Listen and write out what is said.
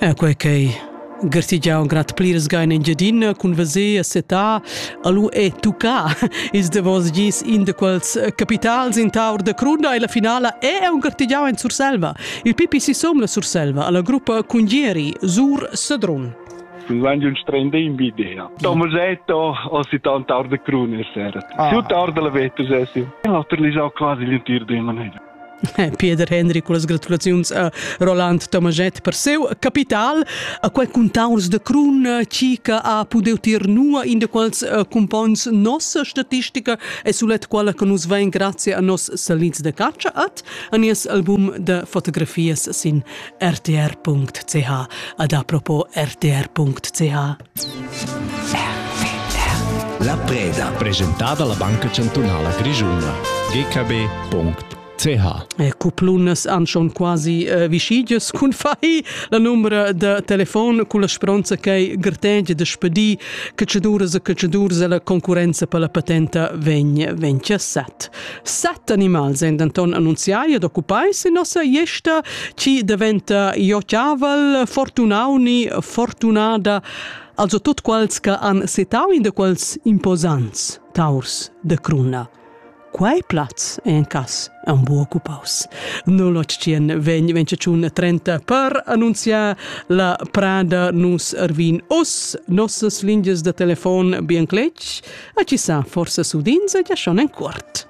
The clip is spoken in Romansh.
E quei ch'ei gartegiau in grad pliras gain Engiadina cun veser e setar alu e tuccar ils davos gis in de quels capitals in taur de cruna e la finala è un gartegiau en Surselva. Il PPC som la Surselva alla gruppa Cungieri Sur Sedrun. Lange un strende in bidea. Thomas Eto ho si tant tar de crune sera. Ah. Si tar de la vetus essi. E l'altro li sa quasi l'intiro de manera. Pieder Hendry con las gratulaziuns a Roland Tomaget per seu capital, a quei contaurs de crun chi che ha pudeu tier nua in de quals eh, cumpons nossa statistica e sulet quella che nus vein grazie a nos salins de caccia at a nies album de fotografias sin rtr.ch ad apropos rtr.ch. La preda. Presentada la Banca Chantunala Grischuna. gkb.ch e Cuplunas han schon quasi eh, vischigias cun fai la numera da telefon con la speranza che gartengia da spedir cacciaduras e cacciaduras e la concurenza per la patenta vegn vegn set. Set animals èn denton annunziai ed occupai sin nossa gliesta, chi daventa iocaval, fortunau ni fortunada, also tut quels che han setau in de quels imposants taurs de cruna. Quei plaz è en cas un bu occupaus. 081 vegn 28 30 per annunziar La prada nus ervin us, nossas lingias da telefon bien cletg, a ci sa forsa sudins e già schon en cuort.